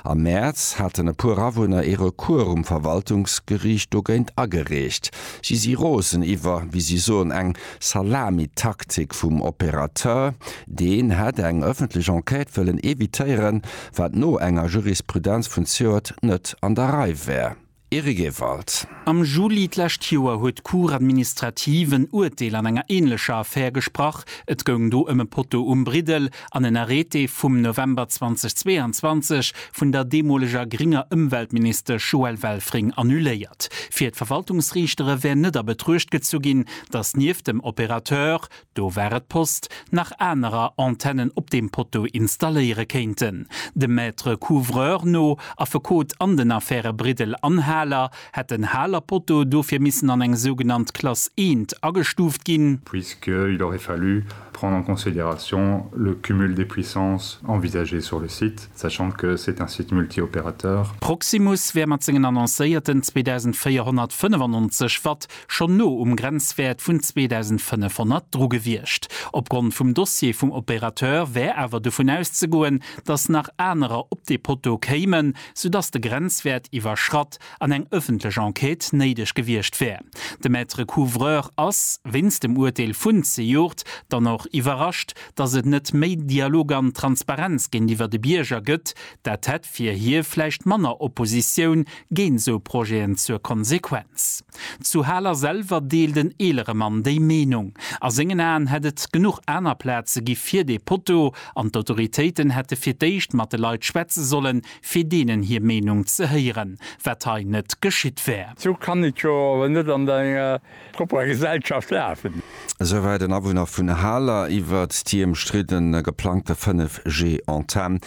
Am Mäerz haten e puer Awunner ee Recours um Verwaltungsgeriicht dogéint agereecht. Si si rosen iwwer, wéi si soen, eng Salamitaktik vum Opérateur. Deen hätt eng ëffentlech Enquête wëllen evitéieren, wat no enger Jurisprudenz vun Zyoert net an der Rei wär. Eric Ewald. Am Juli d'lescht Joer huet d'Cour administrative en Urteel an enger änlecher Affär gesprach. Et goung do ëm e Poteau um Briddel an en Arrêté vum November 2022, vun der deemoleger grénger Ëmweltministesch Joëlle Welfring annuléiert. Fir d'Verwaltungsriichtere wär net a Betruecht gezu ginn, datt nieft dem Opérateur, Do war et d'Post, nach anerer Antennen op deem Poteau installéiere kéinten. Dem Maître couvreur no, Affekot an den Affäre Briddel an Haler, hätt den Haler Poteau dofir missen an eng sougenannt Klass eent agestuuft ginn, puisqu'il aurait fallu prendre en considération le cumul des puissances envisagé sur le site, sachant que c'est un site multi-opérateur. Proximus wär mat sengen annoncéierten 2.495 Watt schonn no um Grenzwäert vun 2.500 dru gewiescht. Opgrond vum Dossier vum Opérateur wär awer dovun auszegoen, datt nach anerer op dee Poteau kéimen, soudatt de Grenzwäert iwwerschratt an eng ëffentlech Enquête néideg gewiescht wär. De Maître couvreur ass, wéinst dem Urteel vun zejoert, dann och iwwerrascht, datt et net méi Dialog an Transparenz géintiwwer de Bierger gëtt. Dat hätt fir hie vläicht manner Oppositioun Géint esou Projeten zur Konsequenz. Zu Haler selwer deelt en eelere Mann déi Meenung. A sengen Aen hätt et genuch aner Plaze gi fir dee Potto, an d'Autoritéiten hätte fir d'éischt mat de Leit schwätze sollen, fir deenen hir Meenung ze héieren, wat hei net geschitt wär. Sou kann et jo awer net an der enger Op enger Gesellschaft lafen. Souwäit en Awunner vun Haler iwwert déi ëmstridden geplangte 5G Antenn.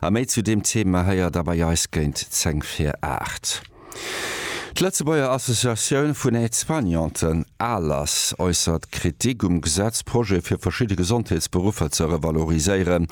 A méi zu deem Thema héiert der bei eis géint 10 fir 8. D'Lëtzebuerger Associatioun vun Aide-soignanten, ALAS, äussert Kritik um Gesetzprojet fir verschidde Gesondheetsberuffer ze revaloriséieren.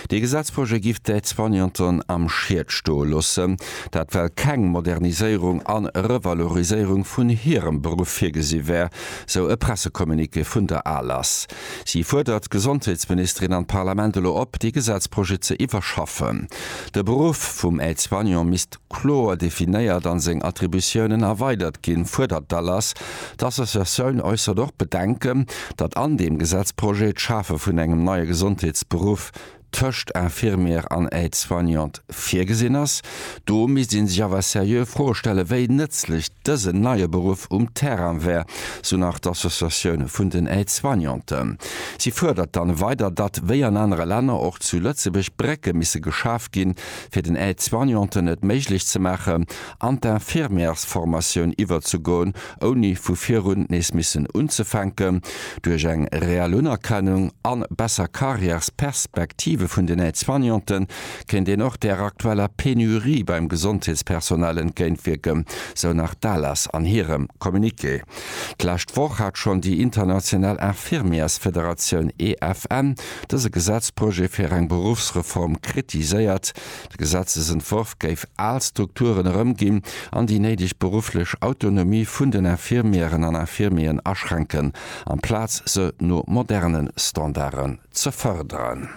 Dee Gesetzprojet giff d'Aide-soignanten am Schied stoe loossen. Dat well keng Moderniséierung an Revaloriséierung vun hirem Beruff virgesi wär, sou e Pressecommuniqué vun der ALAS. Si fuerdert d'Gesondheetsministerin an d'Parlament elo op, dee Gesetzprojet ze iwwerschaffen. De Beruff vum Aide-soignant misst kloer definéiert an seng Attributiounen erweidert ginn, fuerdert d'ALAS. D'Associatioun äussert och Bedenken, datt an deem Gesetzprojet d'Schafe vun engem neie Gesondheetsberuff tëscht Infirmière an Aide-soignante virgesinn ass. Do misst ee sech awer seriö Froe stellen, wéi nëtzlech dësen neie Beruff um Terrain wär, sou nach d'Associatioun vun den Aide-soignanten. Si fuerdert dann weider, datt wéi an anere Länner och zu Lëtzebuerg Brécke misse geschaf ginn, fir den Aide-soignanten et méiglech ze maachen, an d'Infirmièresformatioun iwwerzegoen, ouni vu virun nees missen unzefänken, duerch eng reell Unerkennung a besser Karriärsperspektive vun den Aide-soignanten, kéint een och där aktueller Penurie beim Gesondheetspersonal entgéintwierken, sou nach d'ALAS an hirem Communiqué. D'lescht Woch hat schonn déi international Infirmièresfederatioun EFN dëse Gesetzprojet fir eng Beruffsreform kritiséiert, De Gesetzesentworf géif al Strukturen erëmginn an déi néideg berufflech Autonomie vun den Infirmièren an Infirmieren aschränken, amplaz se no moderne Standarden ze fërderen.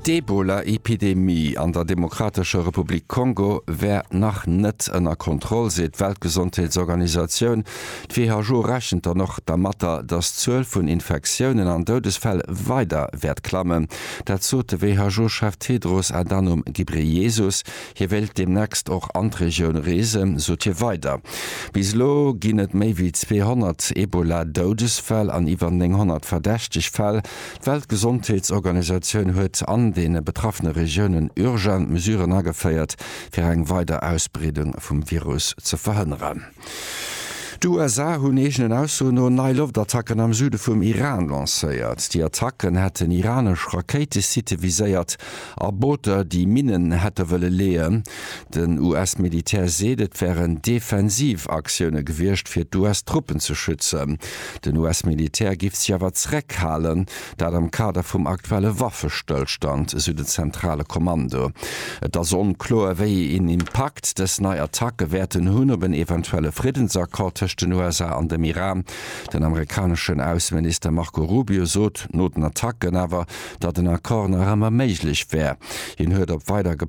D'Ebola-Epidemie an der Demokratescher Republik Kongo wär nach net ënner Kontroll, seet d'Weltgesondheetsorganisatioun. D'WHO rechent dann och dermatter, datt d'Zuel vun Infektiounen an Doudesfäll weider wäert klammen. Dat sot de WHO-Chef Tedros Adhanom Ghebreyesus. Hie wéilt deemnächst och an d'Regioun reesen, sot hie weider. Bis elo ginn et méi wéi 200 Ebola-Doudesfäll an iwwer 900 verdächteg Fäll. D'Weltgesondheetsorganisatioun huet an de betraffene Regiounen urgent Mesuren ageféiert, fir eng weider Ausbreedung vum Virus ze verhënneren. D'USA hunn eegenen Aussoen no nei Loftattacken am Süde vum Iran lancéiert. Déi Attacken hätten iranesch Rakéitesitte viséiert a Booter, déi Minnen hätte wëlle leeën. Den US-Militär seet, et wären defensiv Aktioune gewiescht, fir d'US-Truppen ze schützen. Den US-Militär giff sech awer zeréckhalen, Dat am Kader vum aktuelle Waffestëllstand, esou den zentrale Kommando. Et ass onkloer, wéi een Impakt dës nei Attacke wäerten hunn op en eventuelle Friddensaccord tëscht den USA an dem Iran. Den amerikaneschen Ausseminister Marco Rubio sot no den Attacken awer, datt en Accord nach ëmmer méiglech wär. Hien huet op weider.